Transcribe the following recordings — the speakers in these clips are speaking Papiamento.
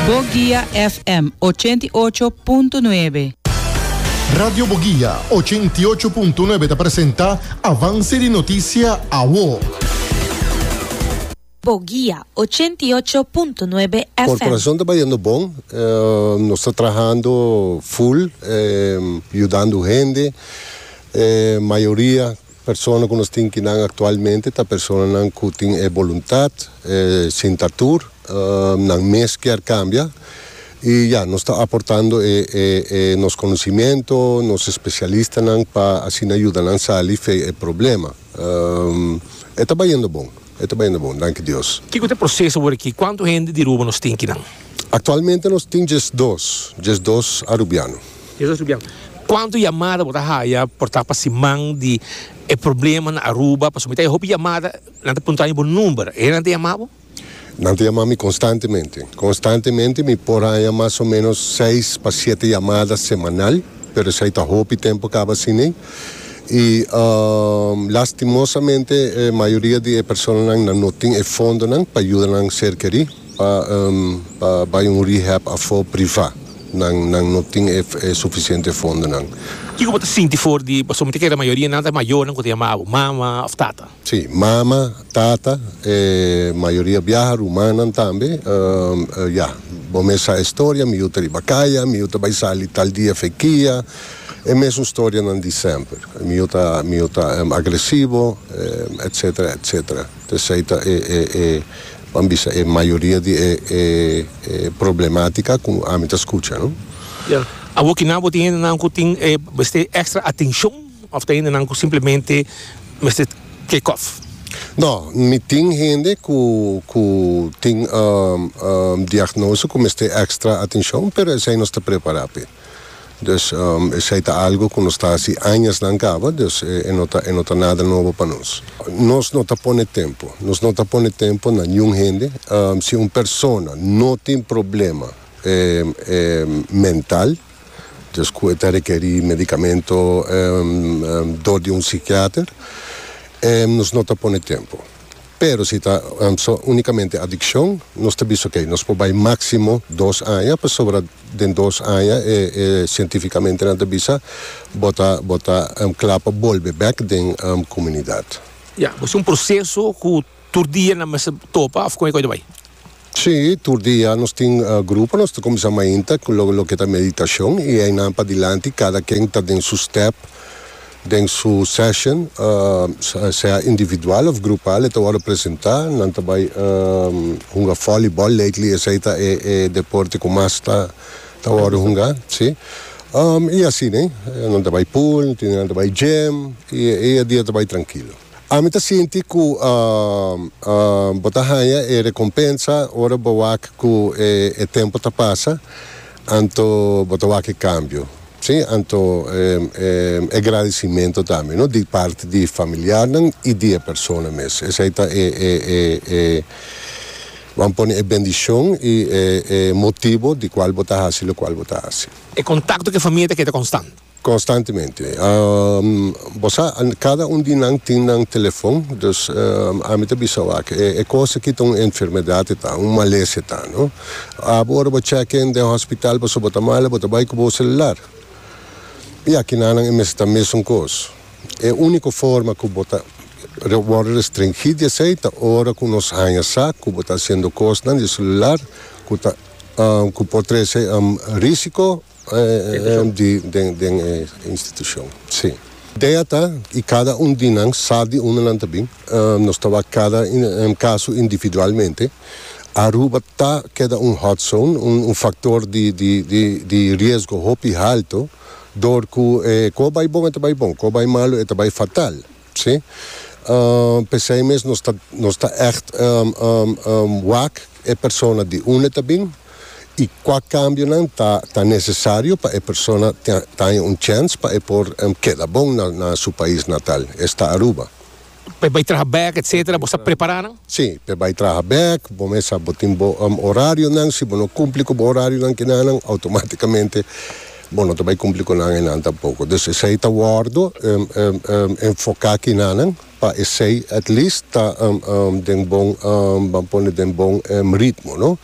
Boguia FM ochenta i ocho punto nuebe. Radio Boguia ochenta i ocho punto nuebe ta presenta Avance di Noticia Awo. Boguia ochenta i ocho punto nuebe FM. Corporacion ta bayendo bon, nos ta trahando full yudando hende, mayoria Persona ku nos tin ki nan aktualmente ta personanan ku tin e boluntat, e sintatur, nan mes kier kambia i ya nos ta aportando e nos konosimiento, nos espesialistanan pa asina yuda nan sali fe e problema. E ta bayendo bon. E ta bainda bon, danki Dios. Kiko ta e proces awor aki? Cuanto hende di Aruba nos tin kinan? Actualmente nos tin djes dos, djes dos Arubiano. Djes dos Arubiano. Cuanto yamada bo ta haya por ta pa siman di e problema na Aruba? Pasobra mi ta haya hopi yamada, nan ta punta mi bo number, e nan ta yama bo? Nan ta yama mi constantemente, constantemente mi por haya mas o menos seis pa siete yamada semanal, pero esai ta hopi tempo caba asina. I lastimosamente e mayoria di e personanan nan no tin e fondonan pa yuda nan serkerí pa bai un rehab afó privá. Nan nan no tin e sufisiente fondonan. Kiko bo ta sinti for di pasobra mi ta kere mayoria nan ta mayornan ku ta yama bo mama òf tata? Sí, mama, tata, e mayoria biaha, rumannan tambe. Ya, bo mes sa e storia, mi yu ta riba kaya, mi yu ta bai sali tal dia fekia, e mesun storianan di semper. Mi yu ta, mi yu ta agresivo, etcetera, etcetera. P'esei ta e, e, e, ban bisa, e mayoria di e, e, e problematica cu ami ta scucha, no? Ya, awor kinan bo tin hendenan cu tin, eh, mester extra atencion? Of ta hende nan cu simplemente mester take off? No, mi tin hende cu cu tin diagnosi cu mester extra atencion, pero esey nos ta prepara p'e. Dus esey ta algo cu nos ta haci añasnan caba, dus e no ta e no ta nada nobo pa nos. Nos no ta pone tempo, nos no ta pone tempo na niun hende. Si un persona no tin problema mental, Djes cu e ta requeri medicamento dor di un psiquiater nos no ta pone tempo. Pero si ta unicamente adiccion nos ta bisa ok nos por bay maximo dos aña pasobra den dos aña e cientificamentenan ta bisa bo ta bo ta cla pa bolbe bek den comunidad. Ya, bo ta un proceso cu tur dia nan mester topa of con e koi ta bay? Sí, tur dia nos tin grupo, nos ta comenzá mainta cu lo loke ta meditacion y eynan padilanti cada ken ta den su step den su session, sea individual of grupal, e ta worde presentá. Nan ta bay hunga volleyball, lately esey ta e deporte cu mas ta worde hungá, sí, y asi, nan ta bay pool, tin día nan ta bay gym y e dia ta bay trankilo. Ami ta sinti ku bo ta haña e rekompensa ora bo wak ku e tempu ta pasa, anto bo ta wak e kambio, si, anto e gradisimentu tambe, no di parti di familiarnan i di e persona mes. Esei ta e, Bo a pone e bendishon i e motibu di kual bo ta hasi lokual bo ta hasi. E kontakto ku e famia ta keda konstant. Constantemente. Bo sa, cada un di nan tin nan telefon, dus ami ta bisa wak, e cos aki ta un enfermedad e ta, un malesa e ta, no? Abo ora bo check in den hospital pasobra bo ta mal, bo ta bay cu bo celular. Y aki nannan e mester ta mesun cos. E unico forma cu bo ta worde restringí di esey ta ora cu nos haya sa cu bo ta haciendo cosnan di e celular cu ta, cu por trece risico. Ehm di den e institucion si. Idea ta y cada un di nan sa di unda nan ta bin. Nos ta wak cada caso individualmente. Aruba ta keda un hot zone, un factor di riesgo hopi halto door cu cu a bay bon e ta bay bon, cu a bay malo e ta bay fatal. Sí. P'esei mes nos ta nos ta ègt wak e persona di unda e ta bin i kua kambionan ta ta nesesario pa e persona ta ta haña un chèns pa e por keda bon na na su pais natal, esta Aruba. P'e bai traha bèk etsetera, bosa prepará nan? Sí, p'e bai traha bèk, bo mester sa bo tin bo orarionan, si bo no kumpli ku bo orarionan kinanan outomátikamente. Bo no ta bai cumpli cu nan enan tampoco. Dus esey ta wordo enfoca kinanan pa esey at least ta den bon, ban pone den bon ritmo no.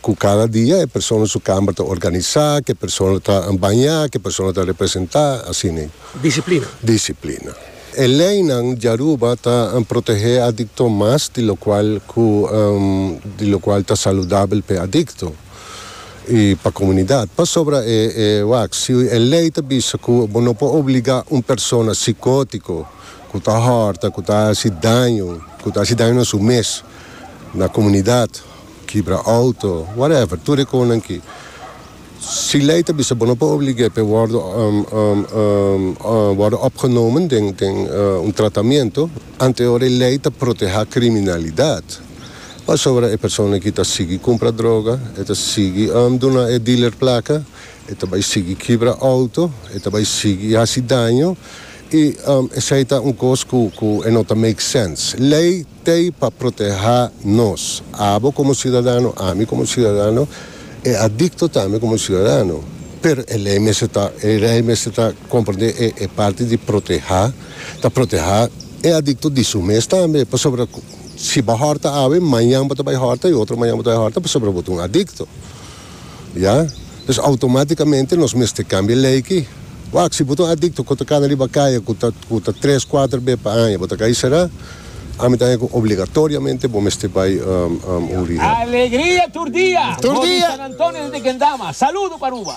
Cu cada dia e persona su camber ta organisa, cu e persona ta baña, cu e persona ta representa, así ne. Disciplina. Disciplina. E leynan di Aruba ta protege adicto mas di locual cu di locual ta saludabel p'e adicto. i pa komunidat. Pasobra e wak, si e lei ta bisa ku bo no por obligá un persona sikótiko ku ta hòrta, ku ta hasi daño, ku ta hasi daño na su mes, na komunidat, kibra outo, whatever, tur e kosnan ki. Si lei ta bisa bo no por oblig'é pa e wòrdu wòrdu opgenomen den un tratamentu, anteor e lei ta protehá kriminalidat. Pasobra e persona aki ta sigui kumpra droga, e ta sigui duna e dealer plaka, e ta bai sigui kibra outo, e ta bai sigui hasi daño i esei ta un kos ku e no ta make sense. Lei t'ei pa protehá nos, abo komo siudadano, ami komo siudadano, e adikto tambe komo siudadano. Pero e lei mester ta, e lei mester ta komprendé e parti di protehá, ta protehá e adikto di su mes tambe, pasobra. Si bo hòrta awe, mañan bo ta bai hòrta i otro mañan bo ta bai hòrta pasobra bo ta un adikto. Ya. Pues outomátikamente nos mester kambia lei ki. Wak, si bo ta un adikto ku ta kana riba kaya ku ta ku ta tres, kuater be pa aña bo ta kai será, ami ta haña ku obligatoriamente bo mester bai un rehab. Alegria tur dia! Tur Bo di dia! San Antonio di Tequendama, saludo pa Aruba!